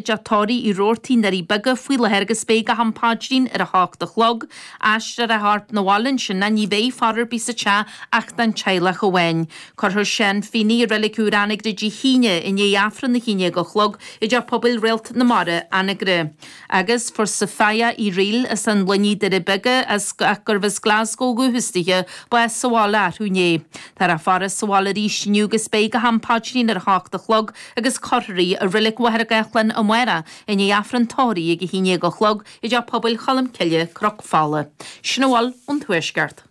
dTeach Tórraimh Uí Robhartaigh i nDoirí Beaga faoi láthair agus beidh go ham paidrín ar a hocht a chlog, aistreofar a chorp 'na bhaile ansin agus ní bheidh faire ar bith sa teach ach don teaghlach amháin. Cuirfear Seán Feeney i Reilig Úr Anagaire Dé hAoine i ndiaidh Aifreann a haon déag a chlog i dTeach Pobail Réalt na Mara, Anagaire. Agus fuair Sophia Uí Fhrighil as an Luinnigh, Doirí Beaga, ach gurbh as Glasgow ó dhúchas daoithe, bás sa bhaile arú inné. Táthar á faire sa bhaile arís inniu agus beidh go ham paidrín ar a hocht a chlog agus cuirfear í i Reilig Mhachaire Gathlán amárach i ndiaidh Aifreann tórraimh ag a haon déag a chlog i dTeach Pobail Cholm Cille, Cnoc Fola. Sin a bhfuil ón Tuaisceart.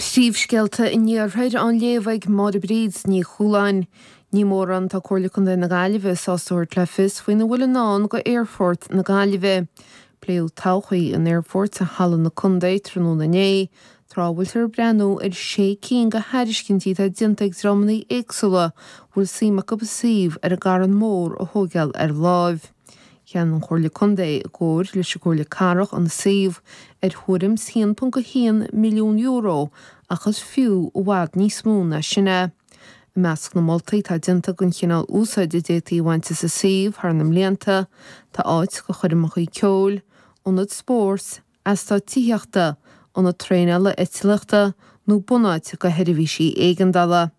Príomhscéalta an Iarthair á léamh ag Máire Bríd Ní Chualáin. Ní mórán atá Comhairle Contae na Gaillimhe sásta a thabhairt le fios faoina bhfuil i ndán go Aerfort na Gaillimhe. Pléadh todhchaí an aerfoirt i Halla na Contae tráthnóna inné, Tráth a bhfuiltear ag breathnú ar shé cinn de thairiscintí atá déanta ag dreamanna éagsúla a bhfuil suim acu an suíomh ar an gCarn Mór a thóigeáil ar láimh, cheannaigh an Chomhairle Contae, i gcomhar leis an gComhairle Cathrach, an suíomh ar thuairim is €1.1 milliún ach is fiú i bhfad níos mó ná sin é. I measc na moltaí atá déanta don chineál úsáid a d'fhéadfaí a bhaint as an suíomh thar na mblianta tá áit do choirmeacha ceoil, ionad spóirt, eastát tithíochta, ionad traenála eitlíochta nó bunáit do sheirbhísí éigeandála.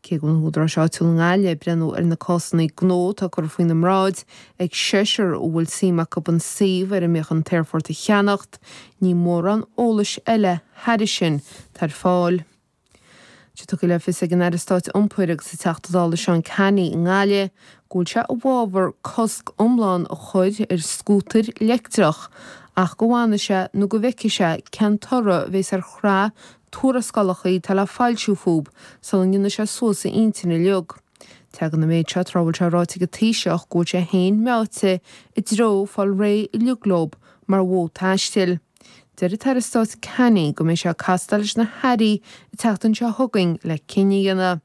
Cé go bhfuil na húdaráis áitiúla i nGaillimh ag breathnú ar na cásanna gnó atá curtha faoina mbráid, ag seisear a bhfuil suim acu an suíomh ar a mbíodh an t-aerfort a cheannacht, ní mórán eolais eile thairis sin atá ar fáil. Tá sé tugtha le fios ag an Aire Stáit Iompair agus an Teachta Dála Seán Canney i nGaillimh go bhfuil sé i bhfabhar cosc iomlán a chur ar scútair leictreach ach go bhfanfaidh sé nó go bhfeicfidh sé cén toradh a bhéas ar shraith tuarascálacha atá le foilsiú fúb sula ndéanfaidh sé suas a intinn uiliog. Tagann an méid seo tráth a bhfuil sé ráite ag an Taoiseach go bhfuil sé féin meáite i dtreo fáil réidh uiliog leob mar mhodh taistil. Deir an tAire Stáit Canney go mbeidh sé ag castáil leis na hairí an tseachtain seo chugainn le cinneadh a dhéanamh.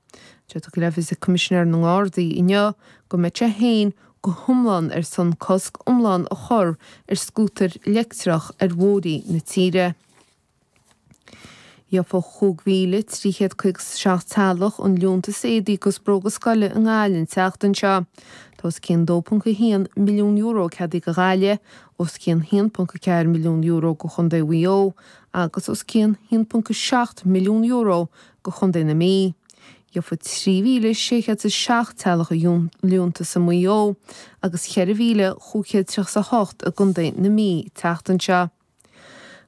Tá sé tugtha le fios ag Coimisinéir na nGardaí inniu go mbeadh sé féin go hiomlán ar son cosc iomlán a chur ar scútair leictreach ar bhóithrí na tíre. Gheobhaidh 5,357 teaghlach an liúntas éadaí agus bróga scoile i nGaillimh an tseachtain seo. Tá os cionn €2.1 milliún ceadaithe do Ghaillimh os cionn €1.4 milliún do Chontae Mhaigh Eo agus os cionn €1.7 milliún do Chontae na Mí. Gheobhaidh 3,607 teaghlach an liúntas i Maigh Eo agus 4,538 i gContae na Mí an tseachtain seo.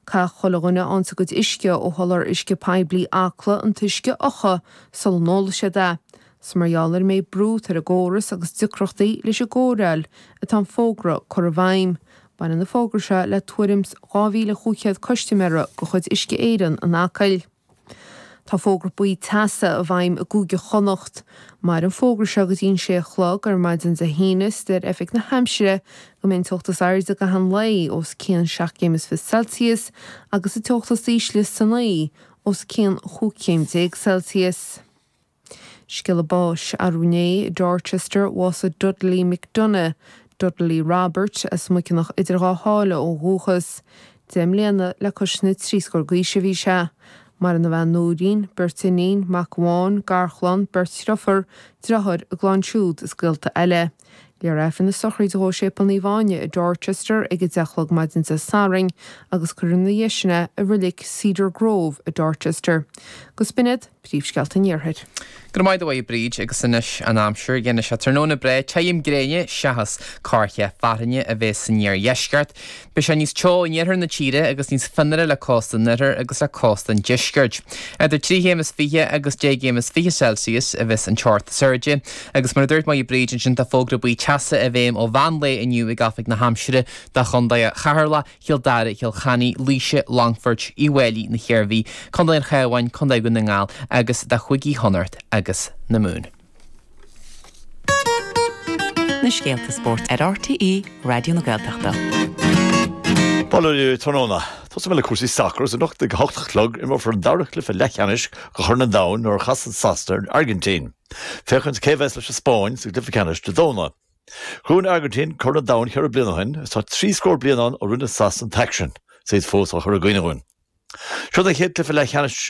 Caithfidh chuile dhuine a fhaigheanns a gcuid uisce ó sholáthar uisce poiblí Acla an t-uisce a fhiuchadh sula n-ólfaidh siad é. Is mar gheall ar an méid brú atá ar an gcóras agus deacrachtaí leis an gcóireáil atá an fógra curtha i bhfeidhm. Baineann an fógra seo le tuairim 2,500 custaiméara de chuid Uisce Éireann in Acaill. Tá fógra buí teasa i bhfeidhm i gCúige Chonnacht. Maireann an fógra seo go dtí an 6 a chlog ar maidin Dé hAoine is deir Oifig na hAimsire go mbeidh an teocht is airde i gcaitheamh an lae os cionn seacht gcéim is fiche Celsius agus an teocht is ísle san oíche os cionn chúig chéim déag Celsius. Scéala báis arú inné i Dorchester bhásaigh Dudley McDonagh, Dudley Robert, as Muiceanach Idir Dhá Sháile ó dhúchas. Deich mbliana le cois na trí scór d'aois a bhí sé. Maireann a bhean Nóirín, beirt iníon, mac amháin, garchlann, beirt driofúr, driotháir, a gclann siúd is gaolta eile. Léifear Aifreann na sochraide dhó i Séipéal Naomh Áine i Dorchester ag a deich a chlog maidin Dé Sathairn agus cuirfear ina dhiaidh sin é i Reilig Cedar Grove i Dorchester. Agus b'in iad príomhscéalta an Iarthair. Go raibh maith agat a Mháire Bríd, agus anois an aimsir, déanfaidh sé tráthnóna breá, tirim gréine seachas corrchith fearthainne a bhéas san iardheisceart. Beidh sé níos teo in iarthar na tíre agus níos fionnuaire le cósta an oirthir agus le cósta an deiscirt. Idir trí chéim is fiche agus deich gcéim is fiche Celsius a bheas an teocht is airde agus mar a dúirt Máire Bríd ansin tá fógra buí teasa i bhfeidhm ó mheán lae inniu ag Oifig na hAimsire do Chondae Cheatharlach, Chill Dara, Chill Chainnaigh, Laoise, Longfoirt, Uíbh Fháilí, na hIarmhí, Condae an Chabháin, Condae Dhún na nGall agus do Chúigí Chonnacht agus na Mumhan. Na scéalta spóirt ar RTÉ Raidió na Gaeltachta. Bail oraibh tráthnóna. Tosóidh mé le cúrsaí sacair is anocht ag a hocht a chlog imreofar an dara cluiche leathcheannais de Chorn an Domhain nuair a chasann Sasana ar an Airgintín. Féachaint cé a bheas leis an Spáinn sa gcluiche ceannais Dé Domhnaigh. Ghabh an Airgintín Corn an Domhain cheithre bliana ó shin agus tá trí scór bliain ann ó rinne Sasana an t-aicsean is iad fós á chur i gcuimhne dúinn. Seo an chéad chluiche leathcheannais